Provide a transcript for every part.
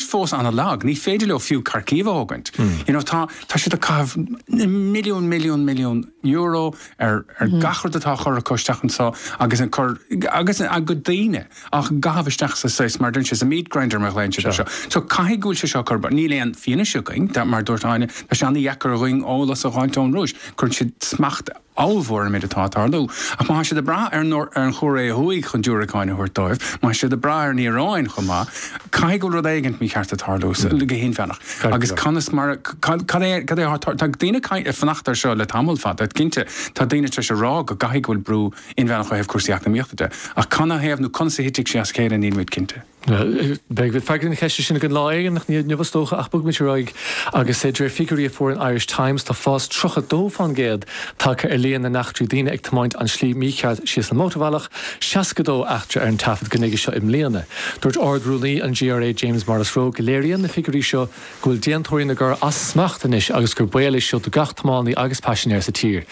fós an-lag, ní féidir leo fiú Kharkiv a thógaint. You know, tá, tá siad ag caitheamh na milliún, milliún, milliún euro ar, ar gach rud atá á chur acu isteach anso agus ag cur, agus a gcuid daoine á gcaitheamh isteach sa saghas, mar a dúirt sé, sa meat grinder mar a ghlaonn siad anseo. So, caithfidh go bhfuil sé seo ag cur bac. Níl aon fianaise againn. Tá, mar a dúirt Áine, tá sé an-dheacair dhúinn eolas a fháilt ón Rúis. Cuireann siad smacht, Ábhalmhór ar an méid atá ag tarlú. Ach má tá siad ag brath ar an Chóiré Thuaidh chun diúracáin a thabhairt dóibh, má tá siad ag brath ar an Iaráin chomh maith, caithfidh go bhfuil rud éigint mícheart ag tarlú, go hinmheánach. Agus conas mar a, cad é, cad é atá ag tarlú? Tá daoine ag fanacht air seo le tamall fada, cinnte. Tá daoine tar éis a rá go gcaithfidh go bhfuil brú inmheánach ó thaobh cúrsaí eacnamaíochta de. Ach canathaobh nó conas a thitfidh sé as a chéile, nílimid cinnte. Beidh freagra na ceiste sin againn lá éigin, ach ní inniu is dócha, ach bogfaimid ar aghaidh agus de réir figiúirí a fuair an Irish Times tá fás 32% tagtha ar líon na n-eachtraí daoine ag tiomáint an tslí mícheart síos an mótarbhealach, 62 eachtra ar an taifead go nuige seo i mbliana. Dúirt Ard-Rúnaí an GRA James Morrisroe go léiríonn na figiúirí seo go bhfuil déantóirí na gcoir as smacht anois agus gur baol é seo do gach tiománaí agus paisinéir sa tír.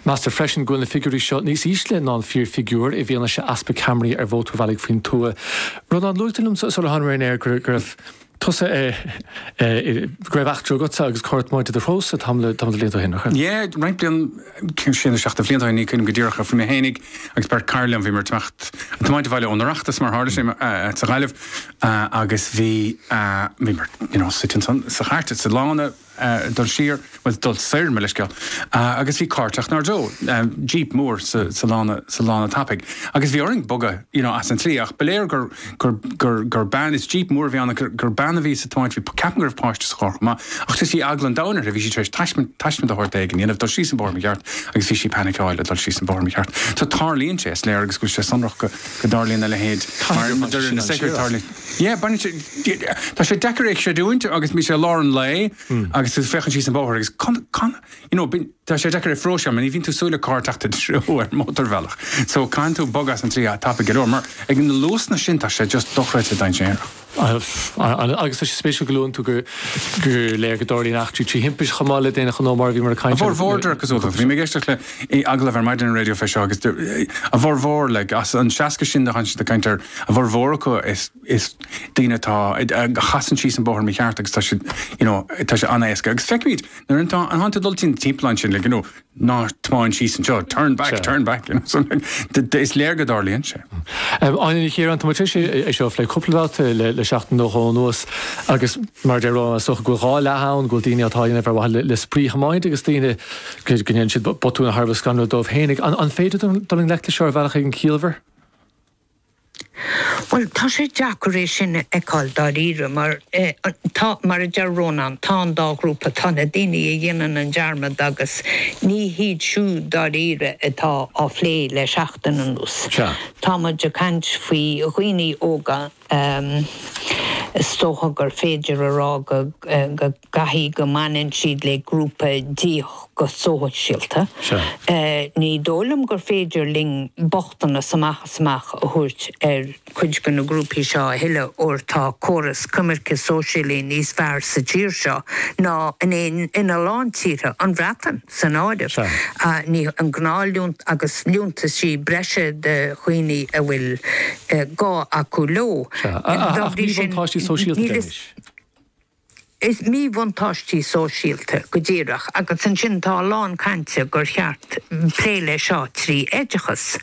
Meastar freisin go bhfuil na figiúirí seo níos ísle ná an fíorfhigiúr i bhfianaise easpa ceamaraí ar mhótarbhealaigh faoin tuath. Rónán, luaigh tú liom sular tháinig mé ar an aer go raibh tusa i. go raibh eachtra agatsa agus carr ag tiomáint i do threosa tamall de bhlianta ó shin, nach raibh? Yé, roinnt bliain, sé nó seacht de bhlianta ó shin, ní cuimhnim go díreach, ach bhí mé fhéinig agus beirt cara liom, bhíomar ag teacht, ag tiomáint abhaile ón Oireachtas, mar a tharla sé, sa Ghaillimh. agus bhí, bhíomar, you know, suite ansan sa chairt, sa lána, dul siar, bhuel, dul soir, mo leithscéal, agus bhí cairt ag teacht inár dtreo, jeep mór sa lána, sa lána tapaidh, agus bhí orainn bogadh, you know, as an tslí, ach ba léir gur, gur, gur, gur bean, is jeep mór a bhí ann, ach gur bean a bhí sa tiomáint, bhí, ceapaim go raibh páiste sa charr chomh maith, ach just bhí eagla an domhain uirthi, bhí sí tar éis taisme, taisme de shórt éigin a dhéanamh, dul síos an bóthar mícheart, agus bhí sí ag panic-áil ag dul síos an bóthar mícheart. So tarlaíonn sé, is léir, agus go bhfuil sé sonrach go. go dtarlaíonn a leithéid. Caithfidh go dtarlaíonn sé siar as. Tá sé deacair é a chreidiúint agus bhí sé i lár an lae agus tú ag féachaint síos an bóthar agus you know tá sé deacair é a phróiseáil mar ní bhíonn tú ag súil le carr ag teacht i do threo ar mhótarbhealach so caitheann tú bogadh as an tslí tapaidh go leor mar ag na luasanna sin tá sé just dochreidte dainséarach. Agus tá sé spéisiúil go luann tú gur léir go dtarlaíonn eachtraí trí thimpist chomh maith le d'aon ghnó mar a bhíomar ag caint air. A bhfurmhór, de réir cosúlachta. Bhí mé ag éisteacht le agallamh ar maidin ar Raidió fé seo agus a bhfurmhór, like, as an 60 sin a thánn siad ag caint air, a bhfurmhór acu is daoine atá, a chasann síos an bóthar mícheart agus tá sé, you know, tá sé an-éasca. Agus feicimid nuair a thánn tú ag dul timpeall ansin, like, you know, ná tiomáin síos anseo, turn back, turn back, is léir go dtarlaíonn sé. Áine Ní Chiaráin, tá muid tar éis é seo a phlé cúpla babhta le seachtain nó dhó anuas agus mar a deir Rónán, is dócha go bhfuil dhá leath ann, go bhfuil daoine atá á dhéanamh ar mhaithe le spraoithiomáint agus daoine go ndéanann siad botúin thar a bheith scanrúil dóibh féin. An féidir dul i ngleic leis seo ar bhealach éigin ciallmhar? Bhuel, tá sé deacair é sin a fheiceáil dáiríre mar tá, mar a deir Rónán, tá an dá ghrúpa, tá na daoine a dhéanann an dearmad agus ní hiad siúd dáiríre atá á phlé le seachtain anuas. Tá muid ag caint faoi dhaoine óga, is dócha gur féidir a rá go. gcaithfidh go mbaineann siad le grúpa áithrid go sóisialta. Ní dóigh liom gur féidir linn bochtanas amach is amach a thabhairt ar chuid de na grúpaí seo a thuilleadh óir tá córas coimirce sóisialaí níos fearr sa tír seo ná in aon in a lán tíortha, an Bhreatain san áireamh, tríd an gnáth-liúntas agus liúntaisí breise do dhaoine a bhfuil gá acu leo. Ach míbhuntáistí sóisialta anois. Is míbhuntáistí sóisialta, go díreach, agus ansin tá a lán cainte gur cheart plé leis seo trí oideachas.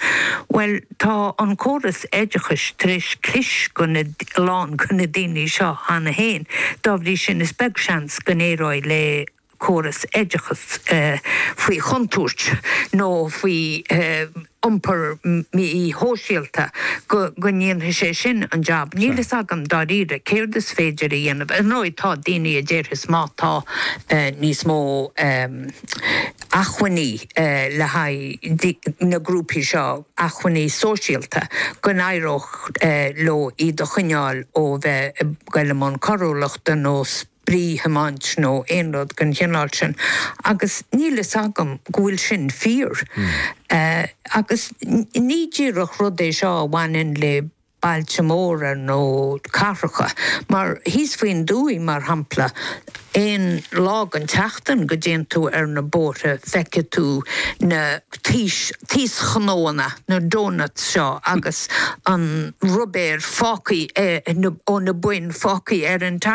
Bhuel, tá an córas oideachais tar éis clis ar na, a lán go na daoine seo cheana féin. Dá bhrí sin, is beag seans go n-éireoidh le. córas oideachais faoi chontúirt nó faoi iompar mí-shóisialta, go ndéanfaidh sé sin an jab. Níl fhios agam, dáiríre, céard is féidir a dhéanamh. Ar ndóigh, tá daoine a déarfas má tá níos mó acmhainní le haghaidh na grúpaí seo, acmhainní sóisialta, go n-éireodh leo iad a choinneáil ó bheith ag goil i mbun coiriúlachta nó spraoithiomáint nó aon rud den chineál sin agus níl fhios agam go bhfuil sin fíor. Agus ní díreach rud é seo a bhaineann le bailte móra nó cathracha mar thíos faoin dtuaith mar shampla aon lá den tseachtain go dtéann tú ar na bóithre feicfidh tú na taoschnóanna, na doughnuts seo agus an ruibéir fágtha ó na boinn fágtha ar an tarmac.